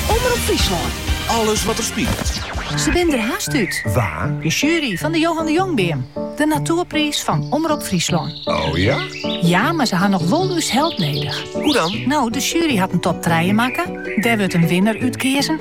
Omrop Fryslân. Alles wat der spilet. Se binne der hast út. Wa? De sjuery fan de Johan de Jongbeam. De Natoerpriis fan Omrop Fryslân. O ja? Ja, mar se ha noch wol ús help nedich. Hoe dan? No, de sjuery hat in top trije makke. Dêr wurdt in winner út keazen.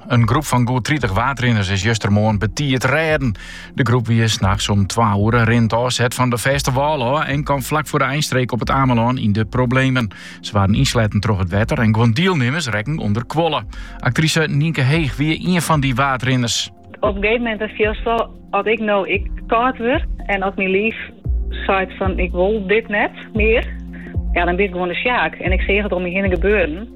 In groep fan goed 30 waadrinners is justermoarn betiid rêden. De groep wie 's nachts om 2 oere rinnend ôfset fan de fêste wâl ôf en kaam flak foar de einstreek op it Amelân yn de problemen. Se waarden ynsletten troch it wetter en guon dielnimmers rekken ûnderkuolle. Aktrise Nynke Heeg wie ien fan dy waadrinners. Op in gegeven momint fielst wol, as ik no ek kâld wurd en as myn liif seit fan ik wol dit net mear, ja, dan bin ik gewoan de sjaak. En ik sjoch it om my hinne gebeuren.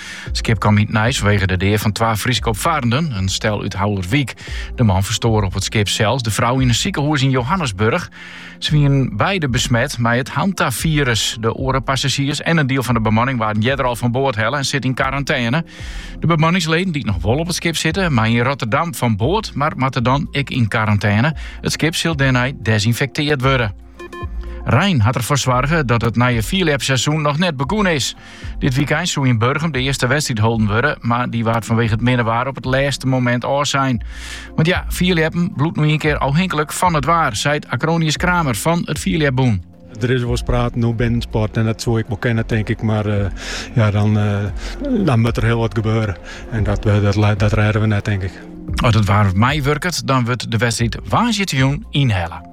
Skip kaam yn it nijs fanwegen de dea fan twa Fryske opfarrenden, in stel út Haulerwyk. De man ferstoar op it skip sels, de frou yn in sikehûs yn Johannesburg. Se wienen beide besmet mei it hantafirus. De oare passazjiers en in diel fan de bemanning waarden earder al fan board helle en sitte yn karantêne. De bemanningsleden dy't noch wol op it skip sitte, meie yn Rotterdam fan board, mar moatte dan ek yn karantêne. It skip sil dêrnei desinfekteard wurde. Rein hat derfoar soarge dat it nije fierljepseizoen noch net begûn is. Dit wykein soe yn Burgum de earste wedstriid holden wurde, mar dy waard fanwege it minne waar op it lêste momint ôfsein. Want ja, fierljeppen bliuwt no ien kear ôfhinklik fan it waar, seit Acronius Kramer fan it Fierljepbûn. Der is wolris praten oer binnensport en dat soe ek wol kinne, tink ik. Mar eh, ja, dan, eh, dan moat der hiel wat gebeure. En dat, eh, dat, dat rêde we net, tink ik. As it waar meiwurket, dan wurdt de wedstriid woansdeitejûn ynhelle.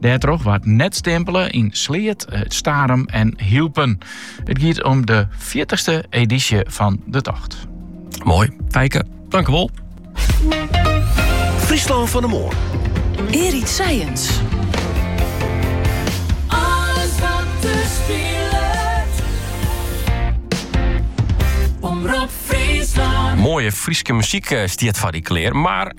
Dêrtroch waard net stimpele yn Sleat, Starum en Hylpen. It giet om de fjirtichste edysje fan de tocht. Moai, Fijke. Dankewol. Fryslân fan de moarn. Erik Science. Alles wat der spilet. Omrop Fryslân. Moaie Fryske muzyk eh, stiet foar dy klear, mar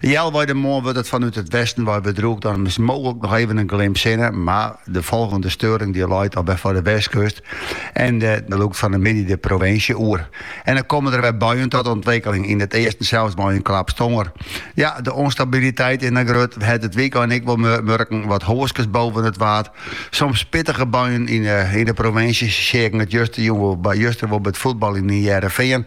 Healwei de moarn wurdt it fanút it westen wei wer drûch. Dan is mooglik noch even in glim sinne, mar de folgjende steuring die leit al wer foar de westkust en dy lûkt fan de middei de provinsje oer. En dan komme der wer buien ta ûntwikkeling, yn it easten sels mei in klap tonger. Ja, de ûnstabiliteit is noch grut. We hawwe it wykein ek wol murken, wat hoaskes boven it Waad, soms pittige buien yn de provinsje, seagen it justerjûn, juster wol by it fuotbal yn It Hearrenfean.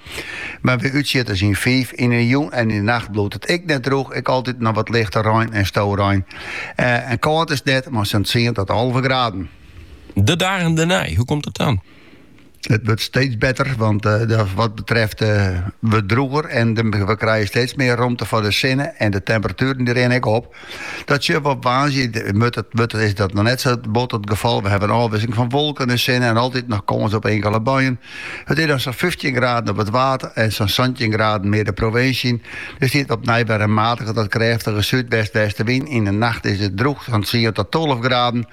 Mar wer útsjitters yn fiif. Yn 'e jûn en yn 'e nacht bliuwt it ek net drûch, ek altyd noch wat lichte rein en storein. En kâld is it net, mei sa'n tsien ta tolve graden. De dagen dernei, hoe komt it dan? It wurdt steeds better, want wat betreft wurdt drûger en we krijen steeds mear romte foar de sinne en de temperatueren die rinne ek op. Dat sjogge we op woansdei. Moarn is dat noch net sa bot it gefal. We hawwe in ôfwisseling fan wolken en sinne en altyd noch kâns op inkele buien. It is dan sa'n fyftjin graden op it water en sa'n santjin graden mear de provinsje yn. Der stiet opnij wer in matige tot krêftige súdwest-westewyn. Yn 'e nacht is it drûch, sa'n tsien ta tolve graden.